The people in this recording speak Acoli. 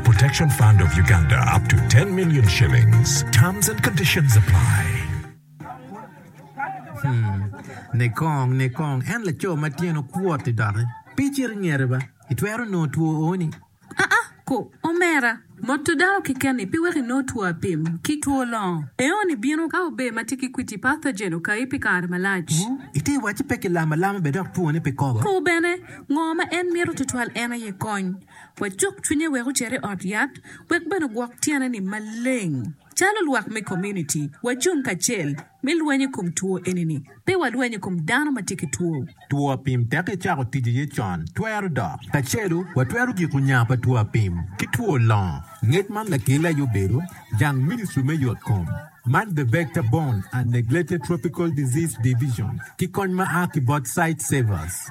Protection Fund of Uganda up to 10 million shillings. Terms and conditions apply. Hmm. Nikong, nikong, en laco ma tyene okwot-ti doki. Pe icit ingete ba. Itwero nongo two ooni. Aa, ko, omera. Moto dako keken-ni pe weko inong two apim ki two longo. Eoni bino ka ober ma tye ki kwiti, pathogen, okayi pi kare malac. Wu, ite wacci pe ki lamo alama bene dok twone pe kobo. Ko bene, ngo ma en mito tutwal en aye kony. Wacuk cwinye wek ocit i ot yat wek bene ogwok tyene-ni maleng. Calo lwak me komuniti, wacung kacel me lweny i kom two eni-ni. Pe walweny i kom dano ma tye ki two. Two apim tek icako tic iye con twero dok. Kacelu watwero giko nya pa two apim ki two longo. Ngec man lakelli aye obedo jang Ministry me Yot Kom, man The Vector Borne and Neglected Tropical Disease Division, ki kony ma a ki bot Sightsavers.